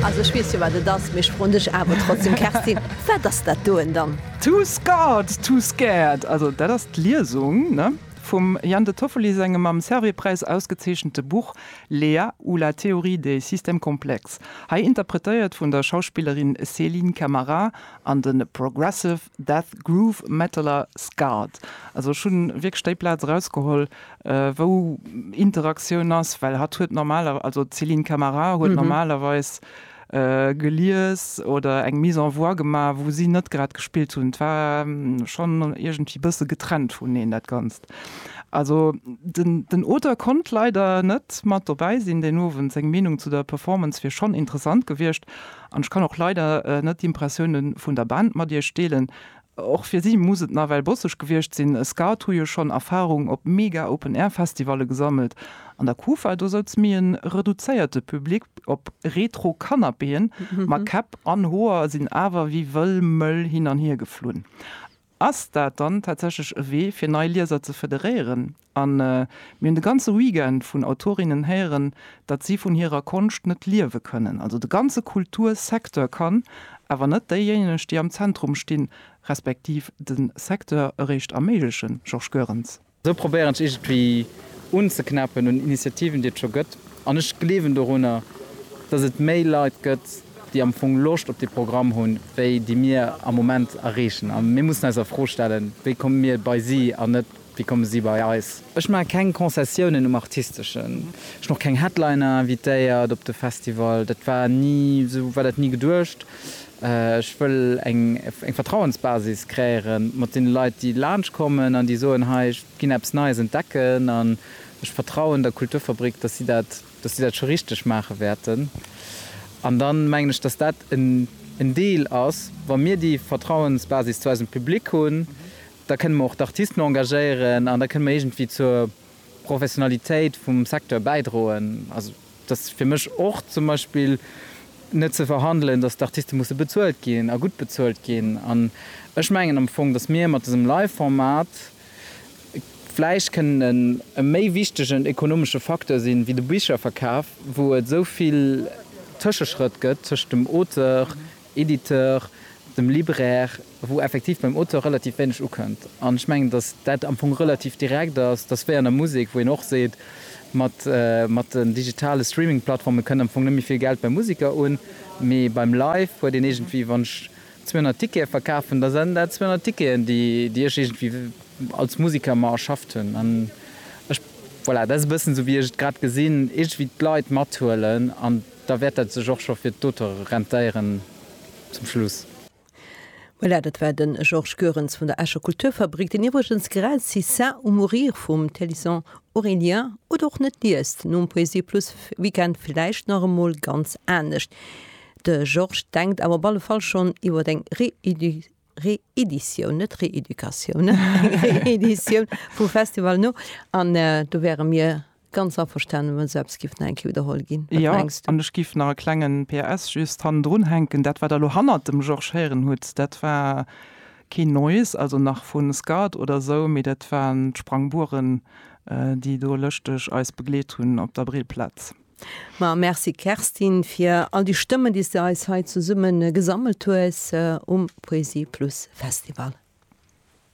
Also ech weess jo wat et ass, mee ech froen dech awer trotzdem Kerstin, wat ass dat doen dann? Too scarred, too scared, also dat ass d'Liesung vum Jan de Toffoli sengem mam Servais-Präis ausgezeechente Buch Léa ou la théorie des systèmes complexes, hei interpretéiert vun der Schauspillerin Céline Camara an de progressive death groove metaler Scarred. Also ech hu wierklech déi Plaz erausgeholl, wou Interaktioun ass, well hatt huet normaler-, also d'Céline Camara huet normalerweis gelies oder eng Mise en voix gemaach, wou si net grad gespillt hunn. Et war schonn iergendwéi bësse getrennt vuneneen, dat Ganzt. Also den, den Auteur konnt leider net mat dobäi sinn deen Owend. Seng Meenung zu der Performance wier schonn interessant gewiescht. An ech kann och leider net d'Impressiounen vun der Band mat iech deelen. Och fir si muss et nawell bosseg gewiescht sinn, e Scout hu jo schonn Erfarung op mega Open-Air-Festivalle gesammelt. An der Kufa, do souz méi e reduzéierte Public op Retro-Canapéen, ma Käpp an Hoer sinn awer wéi wëll Mëll hin an hier geflunn. Ass dat dann tatsächlech e Wee, fir nei Lieser ze federéieren? A mir hunn de ganze Weekend vun Autorinnen héieren, datt si vun hirer Konscht net liewe kënnen. Also de ganze Kultursecteur kann, awer net déijéineg, déi am Zentrum stinn, respektiv de Secteur eréischt erméiglechen. Georges Goerens. Esou probéieren ech iergendwéi unzeknäppen un Initiativen, déi et scho gëtt. An ech gleewen dorunner, datt et méi Leit gëtt, déi am Fong Loscht op dee Programm hunn, wéi déi mir am Moment erreechen. A mir mussen eis a Fro stellen, wéi komme mir bei si an net, Wéi komme si bei eis? Ech maache keng Concessiounen um Artisteschen. Ech hunn och keng Headliner invitéiert op de Festival. Dat war ni, esou war dat ni geduecht. Ech wëll eng Vertrauensbasis kreéieren mat deene Leit, déi laanscht kommen an déi soen, hei, ech ginn eppes Neies entdecken an ech vertrauen der Kulturfabrik, datt si dat, datt si dat scho richteg maache wäerten. An da mengen ech, datt dat en Deel ass, wa mir déi Vertrauensbasis zu eisem Public hunn, Da kënne mer och d'Artisten engagéieren an da kënne mer iergendwéi zur Professionalitéit vum Secteur bäidroen. Also, et ass fir mech och zum Beispill net ze verhandelen, dass d'Artiste musse bezuelt ginn a gutt bezuelt ginn. An ech mengen am Fong, dass mir mat dësem Live-Format vläicht kënnen e méi wichtegen ekonomesche Facteur sinn, wéi de Bicherverkaf, wou et esou vill Tëscheschrëtt gëtt tëschent dem Auteur, Editeur, dem Libraire, wou effektiv beim Auteur relativ wéineg ukënnt. An ech mengen, datt dat am Fong relativ direkt ass, datt wéi an der Musek, wou een och seet, mat, mat den digitale Streaming-Plattforme kënnt am Fong net méi vill Geld beim Museker un, mee beim Live huet een iergendwéi, wann ech 200 Tickete verkafen, da sinn dat 200 Ticketen, déi, déi ech iergendwéi als Museker mer erschafft hunn. An ech, voilà, dat ass e bëssen esou, wéi ech et grad gesinn, iergendwéi d'Leit mathuelen an. Da wäert dat sech och scho fir d'Auteure rentéieren zum Schluss. Voilà, dat war de Georges Goerens vun der Escher Kulturfabrik, deen iwwregens grad C'est ça ou mourir vum Thélyson Aurélien oder och net liest. Nom Poesie-Plus Weekend vläicht nach emol ganz anescht. De Georges denkt awer op alle Fall schonn iwwer eng Reédition. Reeditioun, net Reeducatioun, eng Reeditioun vum Festival no. An do wäre mir ganz averstanen, wa sou eppes géif nach eng Kéier widderholl ginn. Wat mengs du? Jo, an ech géif nach e klengen PS just hannendrun hänken, Dat, wat der elo hannert dem Georges héieren hutt, dat war keen Noise, also nach vun Scud oder esou, mee dat waren d'Sprangbueren, déi do lëschteg eis begleet hunn op der Brillplaz. Ma merci Kerstin fir all déi Stëmmen déi s de eis hei zesummen gesammelt hues um Poesie Plus Festival.